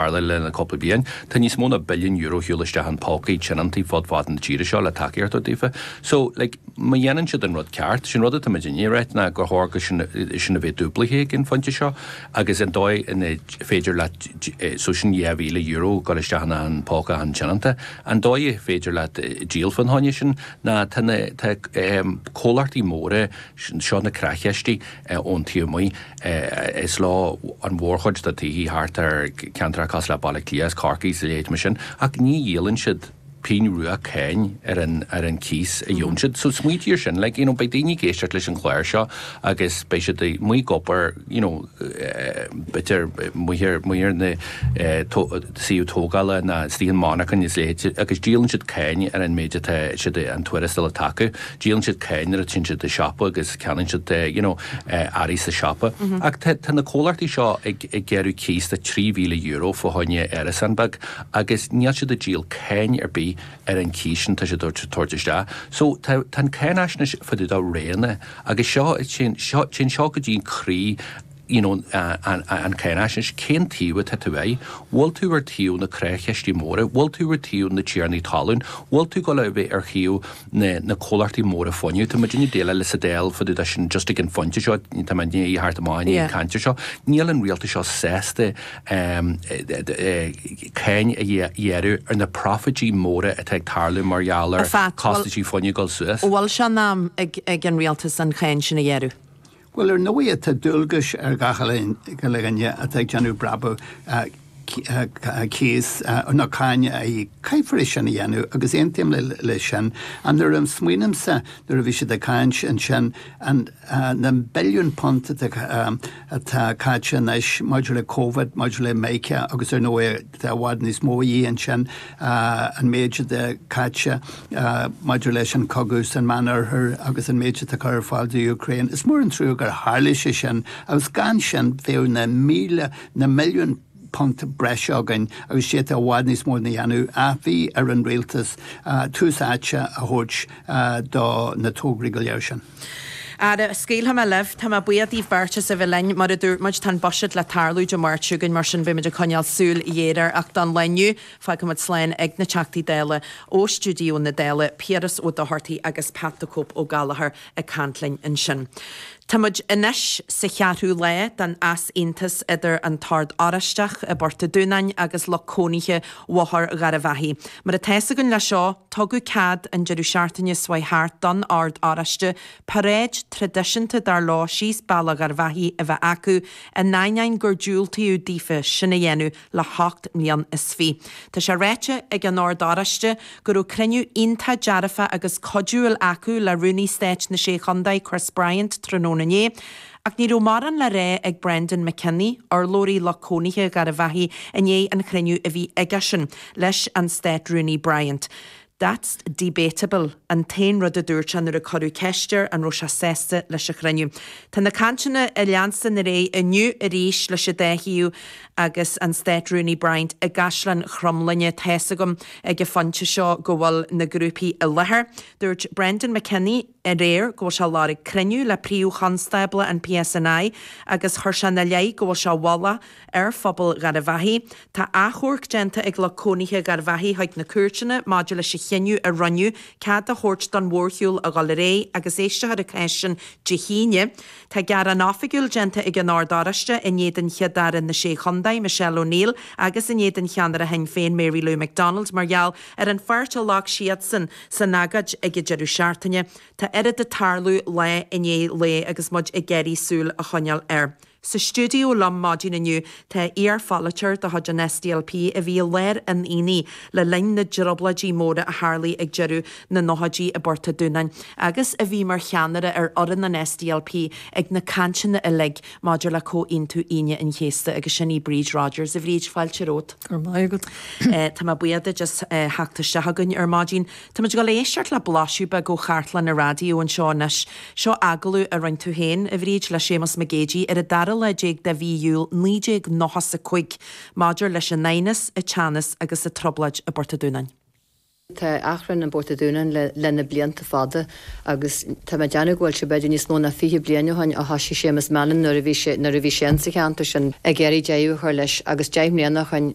Mar le cúpla bliain, tá níos mó ná billiún euro siúl isteach in pócaí tionóntaí fud fad na tíre seo le tacú a thabhairt daofa. So, like, má dhéanann siad an rud ceart, sin rud atá muid i ndiaidh a ráit, ná gur chóir go sin, sin a bheith dúblaithe ag an phointe seo, agus an dóigh ar féidir leat, so sin dhá mhíle euro a chur isteach in achan póca achan tionónta, an dóigh ar féidir leat díol fán cháineadh sin, ná tá na, tá, eh, comhlachtaí móra, seo na creach-chistí, ón Tuamaí. Is leo an mhórchuid de thithe thart ar cheantracha cosúil le Baile Átha Cliath is Corcaigh is a leithéidí sin, ach ní dhíolann siad pingin rua cáin ar an chíos a fhaigheann siad. So smaointigh ar sin, like, you know, beidh daoine ag éisteacht leis an chlár seo agus beidh siad amuigh ag obair, you know, bíodh ar, ar na suíomh tógála nó istigh i monarchain is a leithéid agus díolann siad cáin ar an méid atá siad, an tuarastal atá acu. díolann siad cáin nuair a téann siad go dtí siopa agus ceannaíonn siad you know earraí sa siopa ach tá tá na comhlachtaí seo ag ag gearradh cíos de trí mhíle euro fá choinne árasán beag agus níl siad ag díol cáin ar bith ar an cíos sin tá siad ag tabhairt isteach so tá tá an cháinaisnéis fá dtaobh de roghanna agus seo téann seo téann seo go dtí an croí you know an cháinaisnéis, cén taobh atá tú air? Bhfuil tú ar taobh na creach-chistí móra? Bhfuil tú ar taobh na tiarnaí talún? Bhfuil tú ag gabháil a bheith ar thaobh na na comhlachtaí móra fuinnimh? Tá muid ag déileáil leis sa Dáil fá dtaobh de sin just ag an phointe seo, tá muid i ndiaidh theacht amach ón chaint seo. Níl an rialtas seo sásta cáin a ghearradh ar na proifití móra atá ag tarlú mar gheall ar costaisí fuinnimh ag dul suas. Bhfuil sé in am ag an rialtas an cháin sin a ghearradh? Bhuel, ar ndóigh tá dualgais ar gach uile dhuine atá ag déanamh brabaigh cíos, nó cáin a íoc, caithfear é sin a dhéanamh agus aontaím leis sin. Ach nuair a smaoinímse nuair a bhí siad ag caint ansin, na billiúin punt atá caite anois maidir le Covid, maidir le mica agus ar ndóigh Tá i bhfad níos mó de shin, an méid atá caite maidir leis an chogadh san Meán Oirthear agus an méid atá curtha ar fáil do Ukraine. Is mór an trua gur tharla sé sin agus gan sin bheadh na mílte, na milliúin punt breise againn agus d'fhéadfadh i bhfad níos mó a dhéanamh. Ach bhí ar an rialtas tús áite a thabhairt do na tograí go léir sin. Ara, scaoilfidh mé libh. Tá mé buíoch díbh beirt as a bheith linn. Mar a dúirt muid, tá an buiséad le tarlú Dé Máirt seo chugainn, mar sin beimid ag coinneáil súil ghéar air, ach don lá inniu, fágfaimid slán ag na Teachtaí Dála ó stiúideo na Dála, Piaras Ó Dochartaigh agus Pat 'The Cope' Ó Gallchóir ag caint linn ansin. Táimid anois sa cheathrú lá den easaontas idir an tOrd Oráisteach i bPort an Dúnáin agus lucht cónaithe Bhóthar Gharbhachaidh. Mar atá fhios againn leis seo, tugadh cead, an deireadh seachtaine s'chuaigh thart, don Ord Oráiste paráid thraidisiúnta dar leo síos Bealach Gharbhachaidh a bheith acu, in ainneoin gur diúltaíodh daofa sin a dhéanamh le hocht mbliain is fiche. Tá sé ráite ag an Ord Oráiste go raibh cruinniú iontach dearfa agus cuidiúil acu le Rúnaí Stáit na Sé Chontae, Chris Bryant, tráthnóna inné, Ach ní raibh mórán le rá ag Breandán Mac Cionnaith, urlabhraí lucht cónaithe Gharbhachaidh, i ndiaidh an chruinniú a bhí aigesean leis an Stát-Rúnaí Bryant. That's debatable, an t-aon rud a dúirt sé nuair a cuireadh ceist air an raibh sé sásta leis an chruinniú. Tá na cainteanna ag leanstan ar aghaidh inniu arís leis an dá thaobh agus an Stát-Rúnaí Bryant i gCaisleán Chromghlinne. Níl's agam ag an phointe seo an bhfuil na grúpaí i láthair. Dúirt Breandán Mac Cionnaith aréir go bhfuil sé ag lorg cruinniú le Príomh-Chonstábla an PSNI agus chuir sé ina leith go bhfuil sé ag bagairt ar phobal Gharbhachaidh. Tá achomharc déanta ag lucht cónaithe Gharbhachaidh chuig na cúirteanna maidir leis an chinneadh a rinneadh cead a thabhairt don mhórshiúl a dhul ar aghaidh agus éistfear a gcás-san Dé hAoine. Tá gearán oifigiúil déanta ag an Ord Oráiste in éadan Chéad-Aire na Sé Chontae, Michelle O'Neill agus in éadan cheannaire Shinn Féin, Mary Lou McDonald mar gheall ar an pháirt a ghlac siadsan san agóid ag an deireadh seachtaine, tá oiread ag tarlú lá i ndiaidh lae agus muid ag iarraidh súil a choinneáil air. Sa stiúideo liom maidin inniu tá iar-pholaiteoir de chuid an SDLP a bhí i lár an aonaigh le linn na dtrioblóidí móra a tharla ag deireadh na nóchaidí i bPort a' Dúnáin, agus a bhí mar cheannaire ar fhoireann an SDLP ag na cainteanna uilig Maidir le Comhaontú Aoine an Chéasta, agus sin í Bríd Rodgers. A Bhríd, fáilte romhat. Go raibh maith agat. Tá mé buíoch díot as theacht isteach againn ar maidin. Táimid ag dul a éisteacht le blaiseadh beag ó chartlann an raidió anseo anois. Seo agallamh a rinne tú féin, a Bhríd, le Séamus Mac Géidigh ar an dara lá déag de mhí Iúil 1995 maidir leis an aighneas, an teannas agus an trioblóid i bPort a Dúnáin. Tá an t-achrann i bPort a' Dúnáin leis na blianta fada agus tá mé ag déanamh go bhfuil sé b'fhéidir níos mó ná fiche bliain ó shoin ó thoisigh Séamus Mallon nuair a bhí sé nuair a bhí sé ins an cheantar sin ag iarraidh deireadh a chur leis agus deich mbliana ó shoin